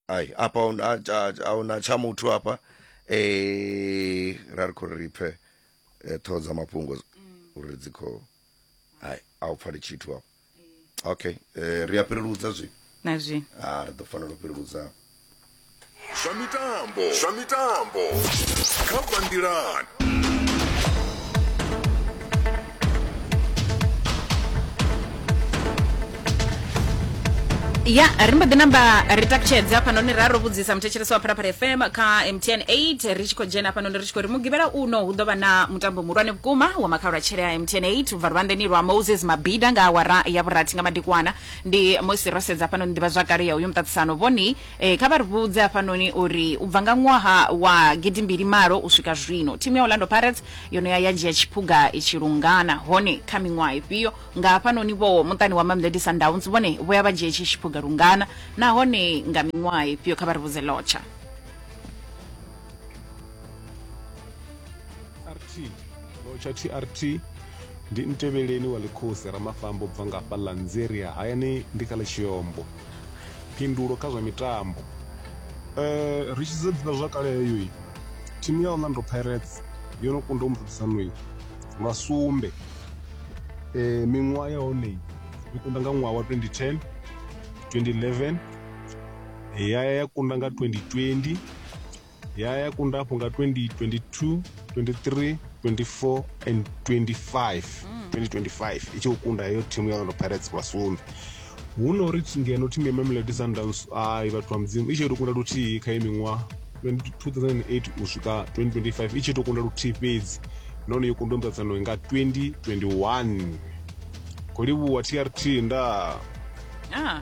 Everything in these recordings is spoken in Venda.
ai apa ahuna- a- a- ahuna tsha muthu hafha eh ra ri khou ri pfe eh, ṱhoho dza mafhungo uri dzi khou hai a u pfali tshithu hafha okay eh, ri a fhireludza zwi na zwino ah ri ḓo fanela u fhireludza zwa mitambo zwa mitambo kha bandilan ya ri mbo ḓi namba ri takutshedze hafhanoni ra ro vhudzisa muthetshelesi wa pharapara fm kha mtn 8 ri tshi khou dzhena hafhanoni ri tshi khou ri mugivhela uno hu ḓo vha na mutambo muhulwane vhukuma wa makhaula tshele a mtn 8 ubva luvhanḓeni lwa moses mabida nga awara ya vhurathi nga madekwana Ndi musi ro sedza hafhanoni nḓivhazwakale ya uyu muṱaṱisano. Vhoni, e, kha vha ri vhudze hafhanoni uri u bva nga ṅwaha wa gidimbili malo u swika zwino, thimu ya Orlando Pirates yo no ya ya dzhia tshiphuga itshi lungana. Hone kha miṅwaha ifhio? Nga hafhanoni vho muṱani wa Mamelodi Sundowns, vhone vho ya vha dzhia itshi tshiphuga lungana, nahone nga miṅwaha ifhio? Kha vha ri vhudze, Lotsha. tsha trt ndi ntevheleni wa ḽikhosi ramafambo bva nga hafha lanzeria hayani ndi kha ḽitshiyombo phindulo kha zwa mitambo um ri tshi sedza ḓivha zwa kale heyo thimu ya orlando pirates yo no kunda u muṱaṱisano lwa sumbe um miṅwaha ya hone yo kunda nga ṅwaha wa 2010 2011 ya ya kunda nga 2020 ya ya kunda afho nga 2022 23 24 and 25 2025 i tshi khou kunda heyo thimu ya orlando pirates vha sumbe hu no ri thi- ngeno thimu ya mamelodi sundowns ai vhathu vha mudzimu i tshi to kunda luthihi kha ye miṅwaha 2008 u swika 2025 i tshi to kunda luthihi fhedzi nahone yo kundwa muṱaṱano nga 2021 khou livhuwa trt nda Ah,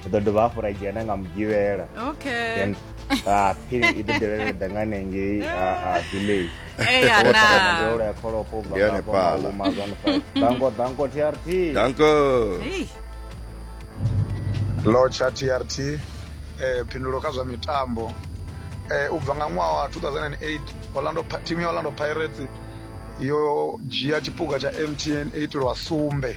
ndi ḓo dovha hafhu ra dzhena nga mugivhela okay then ah, phiri i ḓo dovhela ḓa nga nengei ah, ah, village eya na ndola ya kholopo Ndi yone pala. dango dango trt danko Ei, lotsha trt eh, phindulo kha zwa mitambo eh, u bva nga ṅwaha wa 2008 orlando, Pi- timu ya orlando pirates yo dzhia tshipuga tsha mtn 8 lwa sumbe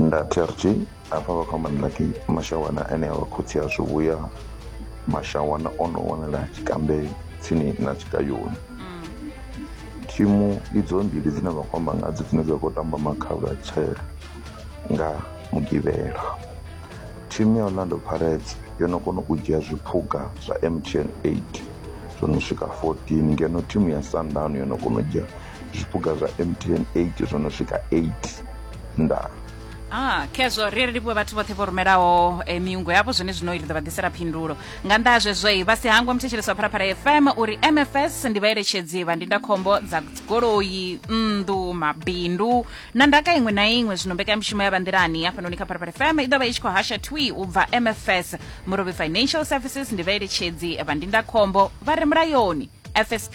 nda trg hafha vha khou amba nda ki mashawana ane a vha khotsi a zwi vhuya mashawana o no wanala tshikambe tsini na tshigayoni thimu idzo mbili dzine vha khou amba ngadzo dzine dza khou tamba makhavha tshele nga mugivhela thimu ya orlando pirates yo no kona u dzhia zwiphuga zwa mtn 8 zwo no swika 14 ngeno thimu ya sundown yo no kona u dzhia zwipuga zwa mtn 8 zwo no swika 8 ndaa Ah, khezwo ri ri livhuwe vhathu vhoṱhe vho rumelaho eh, miungo yavho zwone zwino ri ḓo vha ḓisela phindulo nga nnḓa ha zwezwoi vha si hangwa muthetshelesi wa pharapara fm uri mfs ndi vhaeletshedzi vha ndindakhombo dza goloi nnḓu mabindu na ndaka iṅwe na iṅwe zwino mbekanyamushumo ya vha nḓilani hafhanoni kha pharapara fm i ḓo vha i tshi khou hasha twi u bva mfs murobi financial services ndi vhaeletshedzi vha ndindakhombo vha re mulayoni fsp